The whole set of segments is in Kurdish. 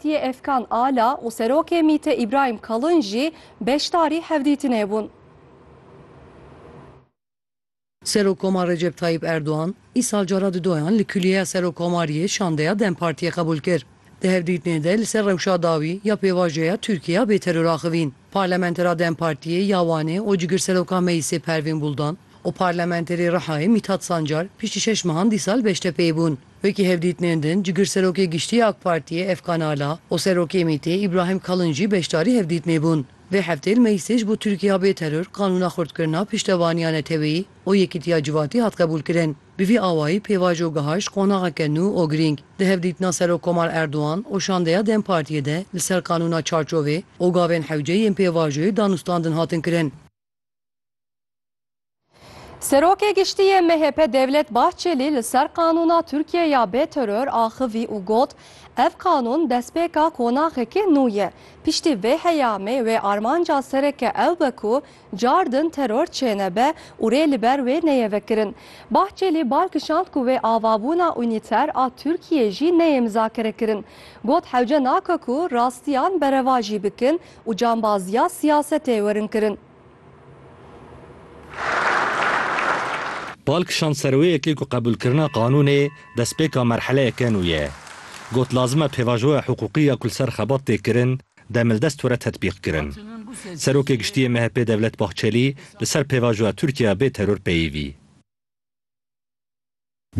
Tiyê Efkan Ala û Serokê MቘTE Îbrahîm Kalin jî beşdarî hevdîtinê bûn. Serokkomar Recep Tayyîp Erdogan, îsal cara di doyan li Kulîyeya Serokkomariyê şandeya dem Partiyê qebûl kir. Di hevdîtinê de li ser rewşa dawî ya pêvajoya Tirkiye ya bêteror axivîn, Parlamentera dem Partiyê ya Wanê û Cigirseroka Meyîsê Pervîn Buldan û Parlamenterê Rihayê Mîthat Sancar piştî şeş mehan dîsal Beştepeyê bûn. Wekî hevdîtinên din cigir Serokê Giştî yê AK Partiyê Efkan Ala û Serokê MÎT'ê Îbrahîm Kalin jî beşdarî hevdîtinê bûn. Vê hefteyê li Meclîsê ji bo Tirkîya bê teror qanûna xurtkirina piştevaniya neteweyî û yekîtiya civati hat qebûlkirin. Bi vî awayî pêvajo gihayşt qonaxeke nû û girîng. Di hevdîtina Serokkomar Erdogan û şandeya dem Partiyê de li ser qanûna çarçovê û gavên hewce yên pêvajoyê danûstandin hatin kirin. Serokê Giştî yê MHP Devlet Bahçelî li ser qanûna Tirkiyeyê ya bê teror axivî û got, Ev qanûn destpêka konaxekî nû ye. Piştî vê heyamê wê armanca sereke ew be ku car din teror çênebe û rê li ber wê neyê vekirin. Bahçelî bal kişand ku wê avabûna unîter a Tirkiyeyê jî neyê mizakerekirin. Got hewce nake ku rastiyan berevajî bikin û cambaziya siyasetê werin kirin. Bal kişand ser wê yekê ku qebûlkirina qanûnê destpêka merheleyeke nû ye. Got lazim e pêvajoya hiqûqî ya ku li ser xebat tê kirin demildest were tetbîqkirin. Serokê Giştî yê MHP'ê Devlet Bahçelî li ser pêvajoya Tirkiye ya bê teror peyivî.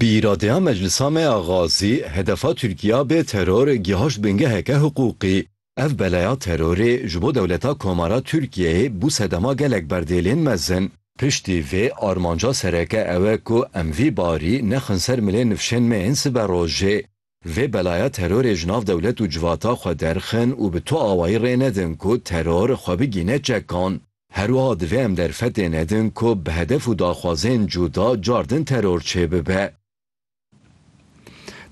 Bi îradeya Meclisa me ya Gazî, hedefa Tirkiya bê teror gihaşt bingeheke hiqûqî. Ev beleya terorê ji bo dewleta Komara Tirkiyeyê bû sedema gelek berdêlên mezin. Piştî vê, armanca sereke ew e ku em vî barî nexin ser milê nifşên me yên siberojê. Vê belaya terorê ji nav dewlet û civata xwe derxin û bi tu awayî rê nedin ku teror xwe bigîne çekan. Her wiha divê em derfetê nedin ku bi hedef û daxwazên cuda car din teror çêbibe.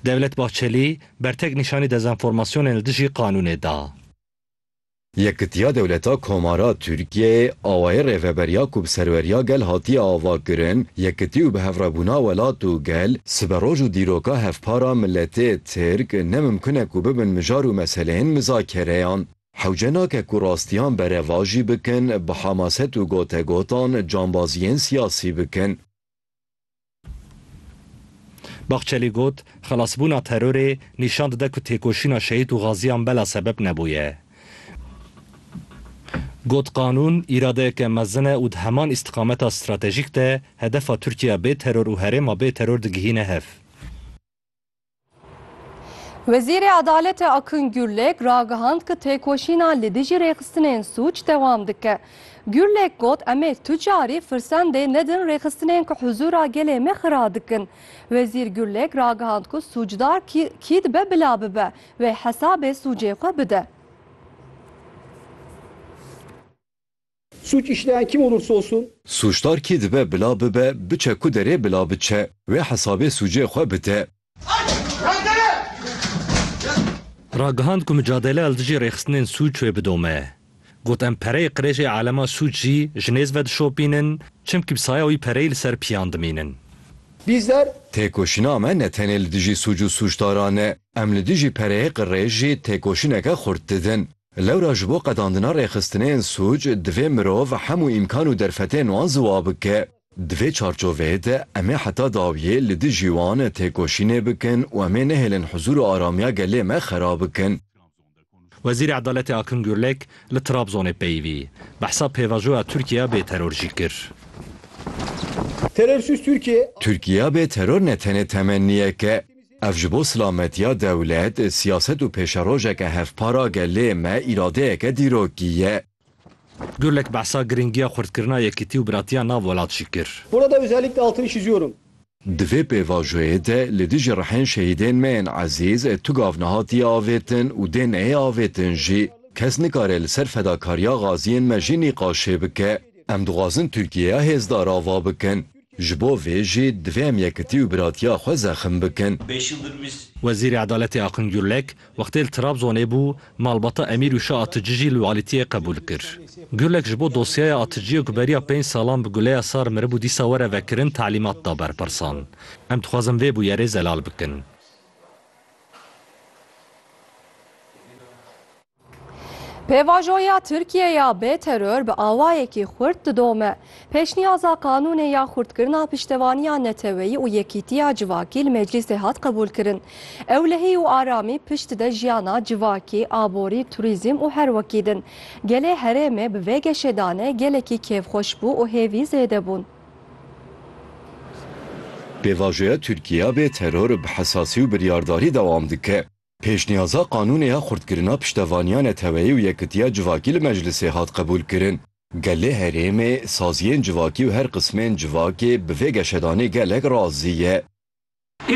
Devlet Bahçelî, bertek nîşanî dezenformasyonên li dijî qanûnê da. Yekitiya Dewleta Komara Tirkiyeyê awayê rêveberiya ku bi serweriya gel hatiye avakirin, yekitî û bihevrebûna welat û gel, siberoj û dîroka hevpara miletê Tirk ne mimkun e ku bibin mijar û meseleyên mizakereyan. Hewce nake ku rastiyan berevajî bikin, bi hamaset û gotegotan cambaziyên siyasî bikin. Bahçelî got, Xelasbûna terorê nîşan dide ku têkoşîna şehîd û xaziyan bela sebeb nebûye. Got, Qanûn îradeyeke mezin e û di heman îstiqameta stratejîk de hedefa Tirkiye bê teror û herêma bê teror digihîne hev. Wezîrê Edaletê Akın Gürlek ragihand ku têkoşîna li dijî rêxistinên sûc dewam dike. Gürlek got em ê tu carî firsendê nedin rêxistinên ku huzûra gelê me xira dikin. Wezîr Gürlek ragihand ku sûcdar kî dibe bila bibe wê hesabê sûcê xwe bide. Sûc îşleyan kim olursa olsun. Sûcdar kî dibe bila bibe, biçe ku derê bila biçe, wê hesabê sûcê xwe bide. Ragihand ku micadele li dijî rêxistinên sûc wê bidome. Got em pereyê qirêjê alema sûc jî ji nêz ve dişopînin, çimkî bi saya wî pereyê li ser piyan dimînin. Bizler. Têkoşîna me ne tenê li dijî sûc û sûcdaran e. Em li dijî pereyê qirêj jî têkoşîneke xurt didin. Lewra ji bo qedandina rêxistinên sûc divê mirov hemû îmkan û derfetên wan ziwa bike. Di vê çarçoveyê de em ê heta dawiyê li dijî wan têkoşînê bikin û em ê nehêlin huzûr û aramiya gelê me xera bikin. Wezîrê Edaletê Akın Gürlek li Trabzonê peyivî, behsa pêvajoya Tirkiyeya bê teror jî kir. Terorsiz Tirkiye. Tirkiyeya bê teror ne tenê temenniyek e. Ev ji bo silametiya dewlet, siyaset û pêşerojeke hevpara gelê me îradeyeke dîrokî ye. Gurlek behsa girîngiya xurtkirina yekîtî û biratiya nav welat jî kir. Burada özellikle altını çiziyorum. Di vê pêvajoyê de li dijî rihên şehîdên me yên ezîz tu gav nehatiye avêtin û dê neyê avêtin jî. Kes nikare li ser fedakariya gaziyên me jî nîqaşê bike. Em dixwazin Tirkiyeya hêzdar ava bikin. Ji bo vê jî divê em yekitî û biratiya xwe zexm bikin. Wezîrê Edaletê Akın Gürlek wextê li Trabzonê bû malbata Emîr Uşa Atıcı jî lualitiyê qebûl kir. Gürlek ji bo dosyaya Atıcıyê ku beriya pênc salan bi guleya sar miribû dîsa were vekirin telîmat da berpirsan. Em dixwazin vê bûyerê zelal bikin. Pêvajoya Tirkiye ya bê teror bi awayekî xurt didome. Pêşniyaza qanûnê ya xurtkirina piştevaniya neteweyî û yekîtiya civakî li meclîsê hat qebûlkirin. Ewlehî û aramî pişt dide jiyana civakî, aborî, turîzm û her wekî din. Gelê herêmê bi vê geşê danê gelekî kêfxweş bû û hêvî zêde bûn. Pêvajoya Tirkiye ya bê teror bi hesasî û biryardarî dewam dike. Pêşniyaza qanûnê ya xurtkirina piştevaniya neteweyî û yekitiya civakî li meclisê hat qebûlkirin. Gelê herêmê, saziyên civakî û her qismên civakê bi vê geşedanê gelek razî ye.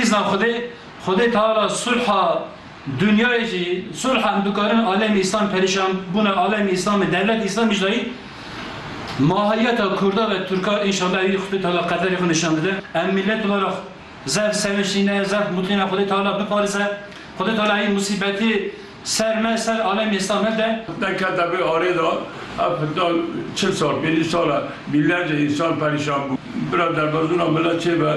Îzna Xwedê, Xwedê Teala sulha dinyayê jî, sulha em dikarin alemî îslam perîşan bûna alemî îslamê dewletê îslamî jî dayîn mahiyeta kurda ve turka înşallah ewî Xwedê Teala qederê xwe nîşan dide em mîletê we ra Zef sevinçîne, zef mutîne Xwedê Teala biparêze. Xwedê Teala hîn musîbetê ser me, ser alemê Îslam nede. Fitne kete vê arê de, ev fitna çil sal, pêncî sal e, bînlerce însan perîşan bû. Bira derbezûna milet çê be,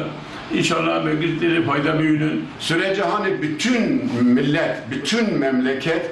înşallah em ê giş tê rê fayde bihînin. Sure Cihane bütün millet, bütün memleket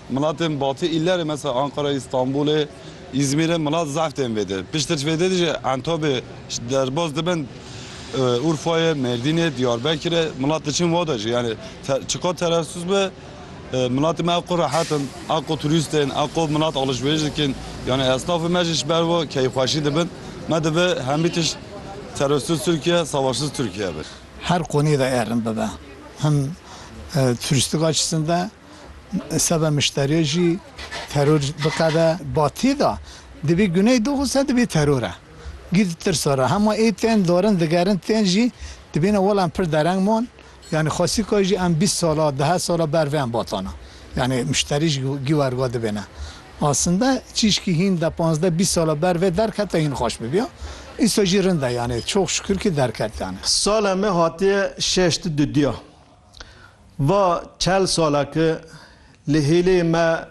Milatên batî îlerê mesela Anqarayê, Îstanbûlê, Îzmîrê milat zehf tên vê de. Piştre ji vê de jî Entobê ji derbas dibin Urfayê, Mêrdînê, Diyarbekirê milat diçin wa de jî. Yanî çiqas teresûs be milatê me a qo rehet in, a qo turîst tên, a qo milat alişverîş dikin. Yanî esnafê me jî ji ber wan keyfxweşî dibin. Me divê hemî tişt teresûs Tirkiye, savaşsiz Tirkiye be. Her qonê de erin bibe. Him turîstika çisin de. Seba mişteriyê jî teror biqede batî de dibî guney dox û se dibî teror e. Gî di tirsa re hema ê tên darin digerin tên jî dibîne welam pir dereng man yanî xwesîka jî em bîst sala dehe sala ber vê em batana yanî mişterî jî gî werga dibêne asinde çîşkî hîn de panzdeh bîst sala ber vê derkete hîn xweş bibiya îsa jî rind e yanî çox şukir kî derket yanî. Sala me hatiye şeş di dudiya. Va çel sala ki li hêlê me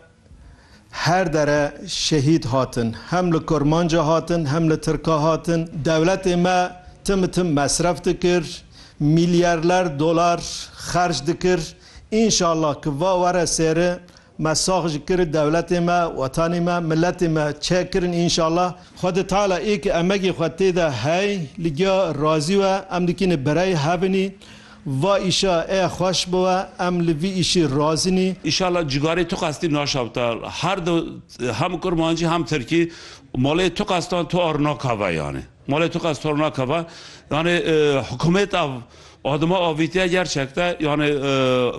her dere şehîd hatin. Hem li kurmanca hatin hem li tirka hatin. Dewletê me tim tim mesref dikir, mîlyarler dolar xerc dikir. Înşallah ki va were seri Me sax ji kir dewletê me, wetanê me, miletê me çek kirin înşallah. Xwedê Teala ê ke emegê xwe tê de hey li giya razî we em dikînê birey hevinî va îşa ê xweş bi we em li vî îşî razî nî. Înşallah cîgarê tu qestî naşewta her du hem kurmancî hem tirkî malê tu qestan tu ar nakeve yanê malê tu qest tu ar nakeve yanê hukûmêta adima avîtiye gerçekte yanê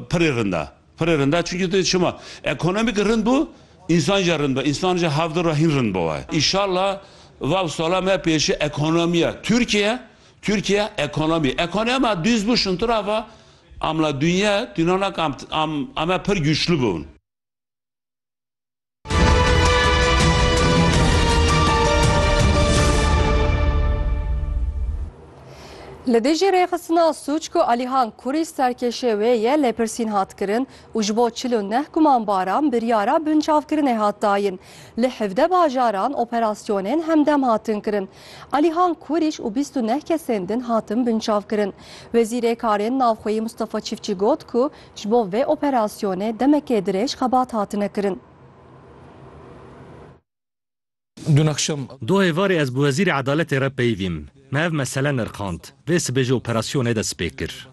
pirê rind e. Pirr rind e çunki tu çima ekonomîk rind bû însan jî rind be însan jî hev dir re hîn rind biwe. Îşallah vav sala me pêşî ekonomiya Tirkiye Tirkiye ekonomî ekonomiya me dûz bû şintir e va amla dûnye dûnana kam am ame pirr gûçlû bûn. Li dijî rêxistina sûc ku Alîhan Kurî serkêşê wê ye lêpirsîn hat kirin û ji bo çil û neh gumanbaran biryara binçavkirinê hat dayin. Li hevde bajaran operasyonên hemdem hatin kirin. Alîhan Kurîş û bîst û neh kesên din hatin binçavkirin. Wezîrê Karên Navxweyî Mustafa Çîfçî got ku Ji bo vê operasyonê demekê dirêj xebat hatine kirin. Du êvarê ez bi Wezîrê Edaletê re peyivîm. Me ev mesele nirxand. Vê sibê ji operasyonê dest pê kir.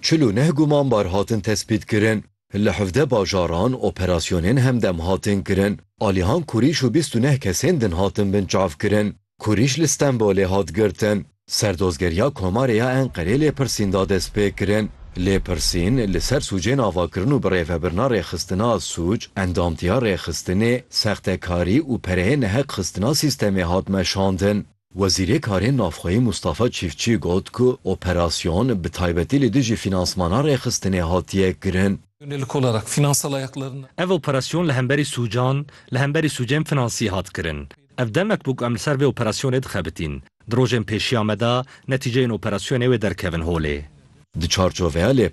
Çil û neh gumanbar hatin tespîtkirin. Li hevdeh bajaran operasyonên hemdem hatin kirin. Alihan Kurîş û bîst û neh kesên din hatin binçavkirin. Kurîş li Stenbolê hat girtin. Serdozgeriya Komarê ya Enqerê lêpirsîn da destpêkirin. Lêpirsîn li ser sûcên avakirin û birêvebirina rêxistina sûc, endamtiya rêxistinê, sextekarî û pereyê neheqxistina sîstemê hat meşandin. Wezîrê Karên Navxweyî Mûstafa Çîfçî got ku operasyon bi taybetî li dijî fînansmana rêxistinê hatiye kirin. Ev operasyon li hemberî sûcan, li hemberî sûcên finansî hat kirin. Ev demek bû ku em li ser vê operasyonê dixebitîn. Di rojên pêşiya me de netîceyên operasyonê wê derkevin holê. Di çarçoveya lêpirsînê,